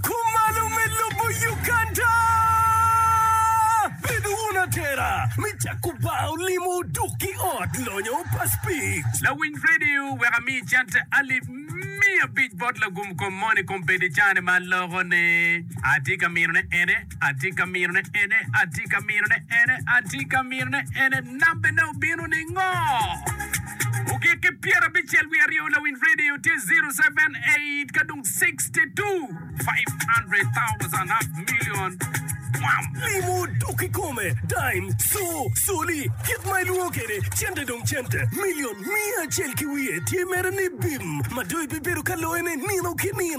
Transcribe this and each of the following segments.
Kumalo me lobo Uganda! Bed wun atera me cako bar olimo dok ki ot lonyo pa Speed. Lawiny Radio wek ami cente alip miya abic bot lagum kom moni kom bed i caa ni ma aloko ne. Atye ka mino ne ene. Atye ka minone ene, atye ka minone ene, atye ka minone ene, nambene obino ningo? Ogik ki pyera abicel wiye aryo lawiny radio tye 078 ka dong 62 500,000 half million bwam. Limo dok kikome, dime, co, coli, kit ma ilwongo kwede, cente dong cente, million miya acel ki wiye tye mere ni bim, ma dong ibibedo ka loyone nino ki nino.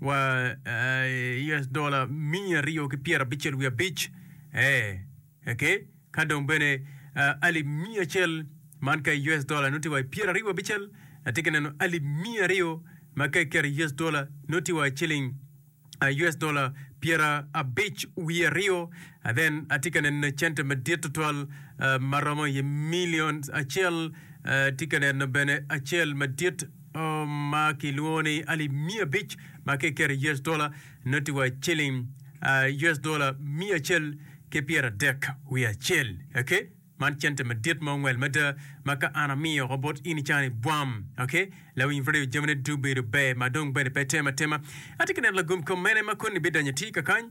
wa US dola miya aryo ki pyera abicel wiye abic eh eke ka dong bene uh, alip miya acel man ka US dola noti wa pyera aryo abicel ati ki neno alip miya aryo ma ka ikero US dola noti wa ciling uh, US dola pyera abic wiye aryo uh, then ati ka neno cente madit tutwal uh, ma romo iye milion acel uh, ti ka neno bene acel madit ma kilwongo ni alip miya abic ma ka iketo i US dola noti wa ciling US dola miya acel ki pyeradek wiye acel. Okay? Man cente madit ma ongwel mada ma ka an amiyo oko bot in ica ni bwam. Okay? Lawiny radio jamine dubedo ber ma dong bene pe tem atema. Atye ka neno lagom kom mene ma koni bidonyo atir kakany?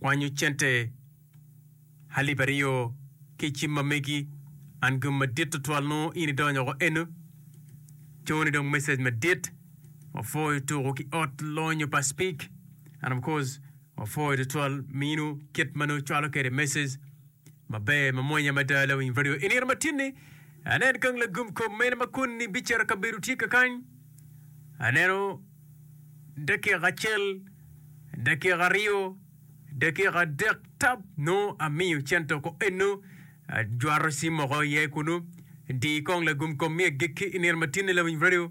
kwanyo cente alip aryo ki i cim ma megi, and gin madit tutwal nongo in idonyo woko eno, cone dong message madit, wapwoyo tuku ki ot lonyo pa speak and of course wapwoyo tutwal minu kit ma nongo icwalo kede message maber mamwonya mada lawiny radio i nino matin ni anen gang lagum kom mene ma koni bicito kabedo tye kakany aneno dakika acel, dakika aryo, dakika adek tap nongo amiyo cento ko eno ajwato ci moko iye kunu di kong lagum kom mi agikki i nino matinne lawiny radio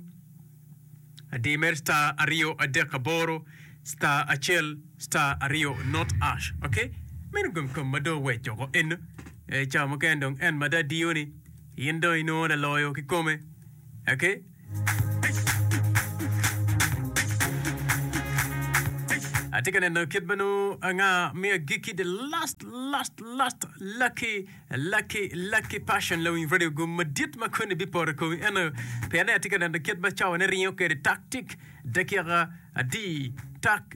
di mer star aryo adek aboro star acel star aryo not ash ok meno gum kom ma dong oweco ko eno e cawa mukene dong en mada diyo ni in dong inongo laloyo ki kome ok Atye ka neno kit ma nongo anga me agikki the last last last lucky lucky lucky passion la winy radio gum madit ma koni biporo i komi eno pienne atye ka neno kit ma cawone ringo kwede taktik dakika adi tak